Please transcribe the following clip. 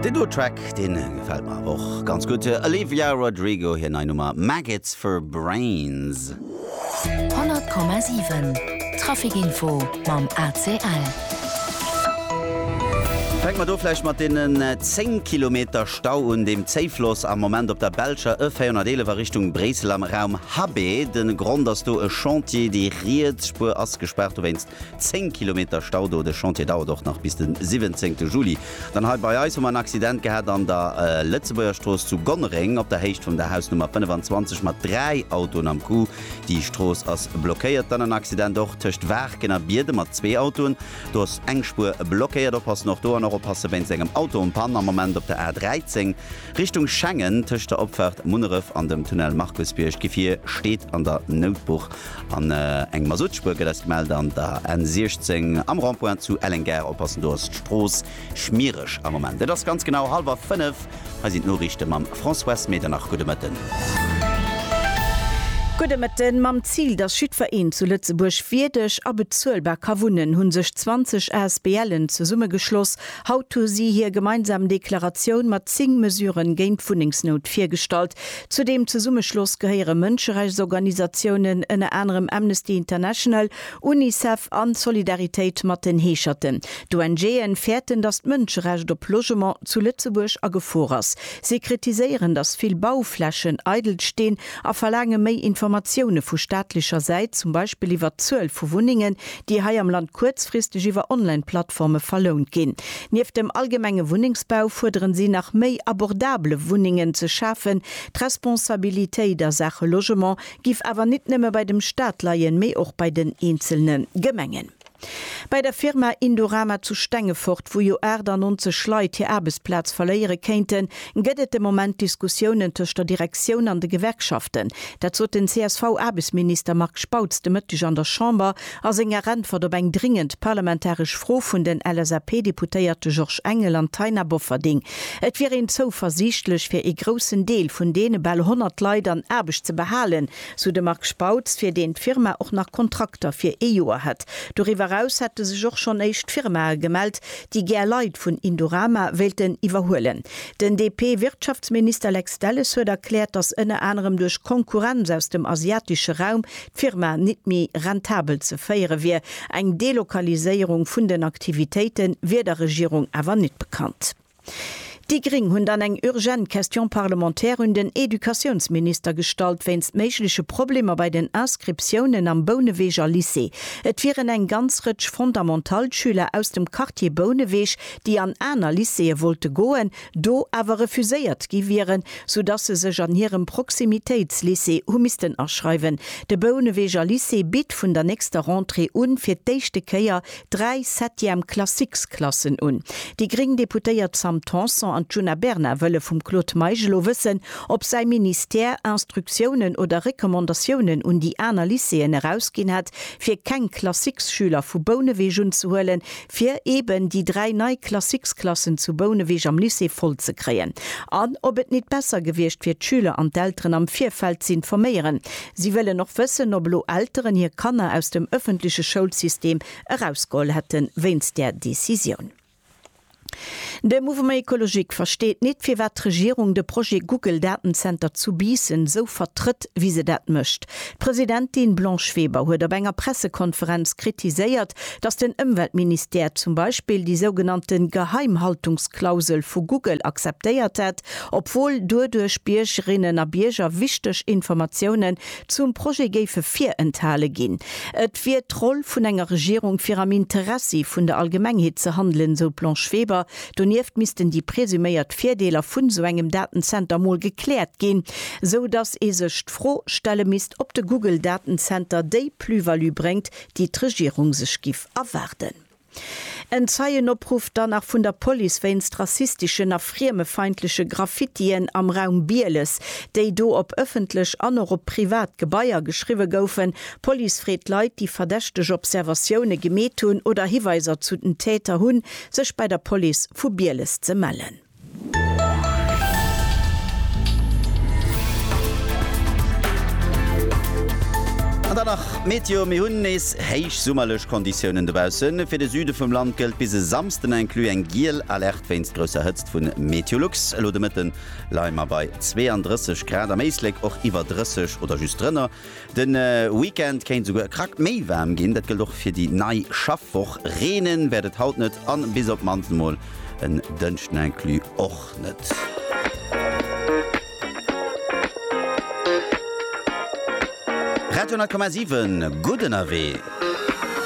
Deen doe Track, deen gefällt mer awer och ganz gutt. Olivia Rodrigo, hir nei Nummer Maggots for Brains. 100,7 Traficinfo mam ACL. Fänke mer do vläicht mat deenen 10 Kilometer Stau un dem Zéifloss am Moment op der belscher E 411 a Richtung Bréissel am Raum Habbé. De Grond ass do e Chantier, déi riets Spuer ass gespaart dowéinst. 10 Kilometer Stau do. De Chantier dauert och nach bis den 17 Juli. Dann hei bei eis hu mer en Accident gehat an der Lëtzebuergerstrooss zu Gonnereng op der Héicht vum der Hausnummer 25 mat 3 Autoen am Coup. Déi Strooss ass blockéiert. Dann en Accident och tëscht Waarken a Bierde mat zwee Autoen. Do ass eng Spuer blockéiert. Oppassen och do an och oppasse wéinst engem Auto en panne am Moment op der A 13. Richtung Schengen, tëscht der Opfaart Munneref an dem Tunnel Markusbierg. D'Gefier steet an der Noutbuch an eng Masuttspuer gëtt eis gemellt an der N 16 am Rond-point zu Elleng-Gare. Oppassen, do ass d'Strooss schmiereg am Moment. Et ass ganz genau hallwer 5, hei sinn d'Noriichte mam Françoise Medernach. Gudde Mëtten. Gudde Mëtten. Mam Zil, datt jiddwer een zu Lëtzebuerg wierdeg a bezuelbar ka wunnen, hu sech 20 ASBLen zesummegeschloss Haut hu si hir gemeinsam Deklaratioun mat 10 Mesuren géint d'Wunnengsnout virgestallt. Zu deem Zesummeschloss gehéiere Mënscherechtsorganisatiounen, ënner anerem Amnesty International, Unicef an Solidaritéit mat den Heescherten. D'ONGe fäerten, datt d'Mënscherecht op Logement zu Lëtzebuerg a Gefor ass. Si kritiséieren, datt vill Bauflächen eidel stinn a verlaange méi Informatioune vu staatlecher Säit, zum Beispill iwwer d'Zuel vu Wunnengen, déi hei am Land kuerzfristeg iwwer Online-Plattforme verlount ginn. Nieft dem allgemenge Wunnengsbau fuerderen si nach méi abordabele Wunnengen ze schafen. D'Responsabilitéit a Saache Logement giff awer nit nëmme bei dem Staat leien, mee och bei den eenzelne Gemengen. Bei der Firma Indorama zu Stengefort, wou jo 98 Leit hir Aarbechtsplaz verléiere kéinten, Gëtt et de Moment Diskussiounen tëscht der Direktioun an de Gewerkschaften? Dat sot den CSV-Aarbechtsminister Marc Spautz de Mëtteg an der Chamber a senger Äntwert op eng dringend parlamentaresch Fro vun den LSAP-Deputéierte Georges Engel an Taina Bofferding. Et wier een zouversiichtlech, fir ee groussen Deel vun deene bal 100 Leit an Aarbecht ze behalen, sou de Marc Spautz, fir deen d'Firma och nach Kontrakter fir ee Joer hätt. Doriwwer eraus hätte sech och schonn éischt Firmae gemellt, déi gär Leit vun Indorama wéilten iwwerhuelen. Den DP-Wirtschaftsminister Lex Delles huet erkläert, datt ënner anerem duerch Konkurrenz aus dem asiatesche Raum d'Firma nit méi rentabel ze féiere wier. Eng Delokaliséierung vun den Aktivitéite wier der Regierung awer nit bekannt. Déi Gring hunn dann eng urgent Question parlementaire un den Educatiounsminister gestallt wéinst méigleche Problemer bei den Inscriptiounen am Bouneweger Lycée. Et wieren eng ganz Rëtsch Fondamentalschüler aus dem Quartier Bouneweg, déi an aner Lycéeë wollte goen, do awer refuséiert gi wieren, sou dass se sech an hirem Proximitéitslycée hu missten aschreiwen. De Bouneweger Lycée bitt vun der nächster Rentrée un fir d'éischte Kéier dräi Septième Classiques-Klassen un. Déi gréng Deputéiert Sam Tanson an d'Djuna Bernard wëlle vum Claude Meisch elo wëssen, ob säi Ministère Instruktiounen oder Recommandatiounen un déi aner Lycéeën erausginn hätt, fir keng Classiques-Schüler vu Bouneweg unzehuelen, fir eeben déi dräi nei Classiques-Klassen zu Bouneweg am Lycée voll ze kréien. An ob et nit besser gewiescht wier, d'Schüler an d'Elteren am Virfeld z'informéieren, Si wëllen och wëssen, ob elo Elteren hir Kanner aus dem ëffentleche Schoulsystem erausgeholl hätte wéinst där Decisioun. De Mouvement Ecologique versteet nit, firwat d'Regierung de Projet Google-Datenzenter zu Biissen esou vertrëtt, wéi se dat mécht. D'Presidentin Blanche Weber huet op enger Pressekonferenz kritiséiert, datt den Ëmweltministère zum Beispill déi sougenannte Geheimhaltungsklausel vu Google akzeptéiert hätt, Obwuel duerduerch Biergerinnen a Bierger wichteg Informatiounen zum Projet géife virenthale ginn. Et wier d'Roll vun enger Regierung fir am Interessi vun der Allgemengheet ze handelen, sou d'Blanche Weber. Donieft missten déi presuméiert Virdeeler vun esou engem Datenzenter mol gekläert ginn, sou datt ee sech d'Fro stelle misst, ob de Google-Datenzenter déi Plus-value bréngt, déi d'Regierung sech giff erwaarden. En Zeienopruff dann nach vun der Police wéinst rassisteschen a friemefeindleche Graffitien am Raum Bieles, déi do op ëffentlech an och op privat Gebaier geschriwwe goufen. D'Police freet Leit, déi verdächteg Observatioune gemeet hunn oder Hiweiser zu den Täter hunn, sech bei der Police vu Bieles ze mellen. An dann nach d'Meteo, Mir hunn nees héich summerlech Konditiounen dobaussen. Fir de Süde vum Land gëllt bis e Samsden inclus eng giel Alerte wéinst grousser Hëtzt vun Meteolux. Elo de Mëtten leie mer bei 32 Grad, am Éislek och iwwer 30 oder just drënner. De Weekend kéint esouguer e Krack méi waarm ginn, dat gëllt och fir déi nei Schaffwoch. Reenen wäert et haut net an bis op d'mannst emol en Dënschden inclus och net. Radio 10,7, Gutt ënnerwee!